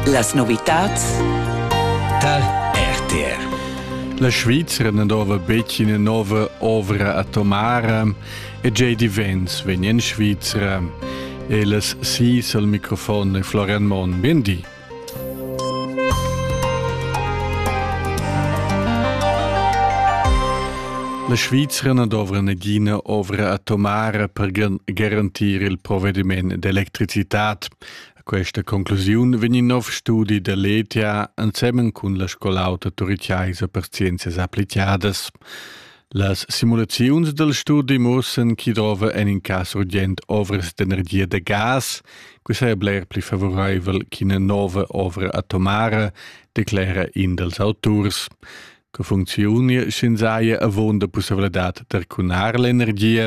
Las novitads tar RTR. La Svizra na dova betg ina nova ovra atomara e J.D. Vance vegn en Svizra. E las sis al microfon è Florian Monn. Bien di. La Svizra na dovra nagina ovra atomara per garantir il provediment d'electricitat. A questa conclusiun vegn in nov studi da l'ETA ensemen cun la scolauta turiciaisa per scienzias applicadas. Las simulaziuns dal studi mussan chi drova en in cas urgent ovras d'energia da gas, que saja bler pli favoraivel ch'ina nova ovra atomara, declera in dals auturs. Co funcziunia sch'ins haja avunda pussavladad d'arcunar l'energia?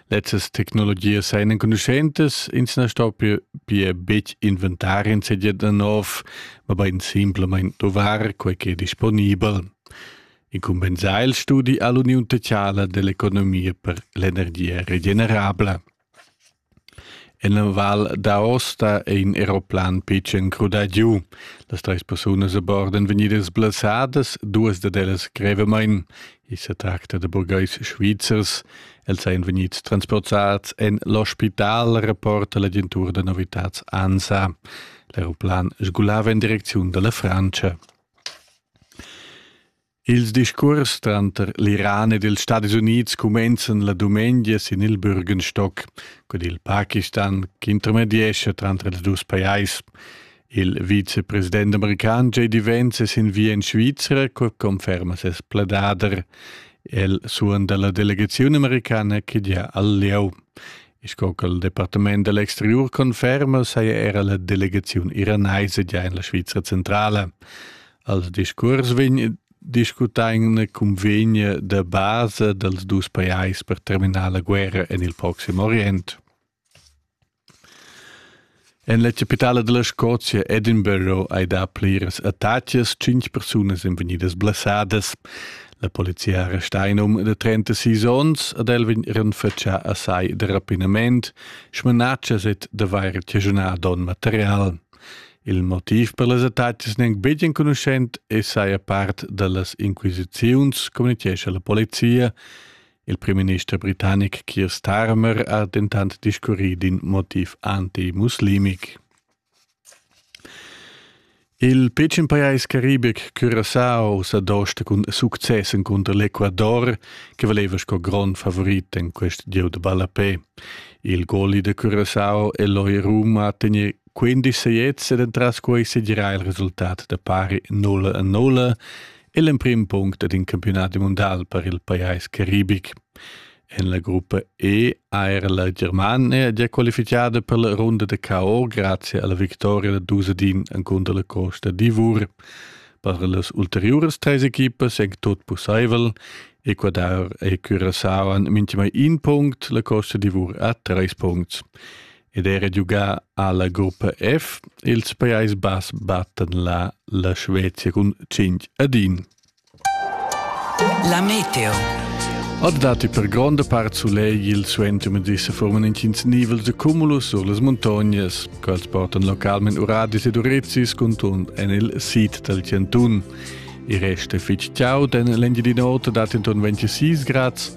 Lezzas tecnologias sajan enconuschentas, ins na stoppia pia betg inventar insatge da nov, mabain simplamain dovar quai ch'è disponibel. Incumbensà il studi ha l'Uniun teatrala dell'economia per l'energia regenerabla. En la Val d'Aosta è in aeroplan pitschen crudà giu. Las treis persunas a bord èn vegnidas blessadas, duas dad ellas grevamain. I sa tracta da burgais svizzers. Els èn vegnids transportads en l'ospital, rapporta l'agentura da novitads ANSA. L'aeroplan sgulava en direcziun da la Frantscha. Ils discuors tranter l'Iran ed ils Stadis Unids cumenzan la dumengia sin il Bürgenstock cun il Pakistan ch'intermediescha tranter ils dus pajais. Il vicepresident american JD Vance è sin via en Svizra, co conferma ses pladader. El suonda la delegaziun americana che gia al lieu. Sco ch'il Departament dell exteriur conferma, saja era la delegaziun iranaisa gia en la Svizra centrala. Als discurs vegn discutà in cunvegn da basa dals dus pajais per terminar la guerra en il Proxim Orient. En la capitala della Scozia, Edinburgh, hai dà pliras attacas, cinque persunas sind vegnidas blessadas. La polizia ha arrestà in um de 36 onns ad el vegnan fatschà a sai de rapinament, smanatschas et d'avair cagiunà don material. Il motiv per las attacas nen betg enconuschent e saja part da las inquisiziuns, communichescha la polizia. Il primminister britannic Keir Starmer ha dentant discurrì d'in motiv antimuslimic. Il pitschen pajais caribic Curaçao sa dosta cun success cunter l'Ecuador, che valeva sco grond favorit en quest gieu de ballapé. Il goli de Curaçao e l'Oiruma ha tegnì 15 seiets ed entras quei segirà il resultat da pari 0 a 0 è l'emprim punct ed in campiunat mondial per il pajais caribic. En la gruppa E ha er la Germania già qualifichada per la runda da KO grazie alla vittoria da Dusedin encunter la Costa d'Ivor. Per las ulteriores treis equipas è tot pussaivel. Ecuador e Curaçao han minchimai in punct, la Costa d'Ivor ha treis punts. ed era giugà ha la gruppa F. Ils Pajais Bass battan là la Svezia cun 5 ad 1. La meteo. Ad dati per gronda part sulegl il suenter medissa forman intgins nivels de cumulus sur las montagnas, quels portan localment uradis ed urizis contund en il sid del Cantun. Il rest è fitg chaud, en l'Engiadin'Ota dat entorno 26 grads,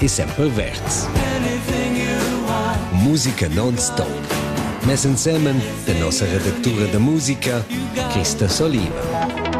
e sempre verds. Musica non-stop. Mess insemen de nossa redactura de musica, Christa Solina.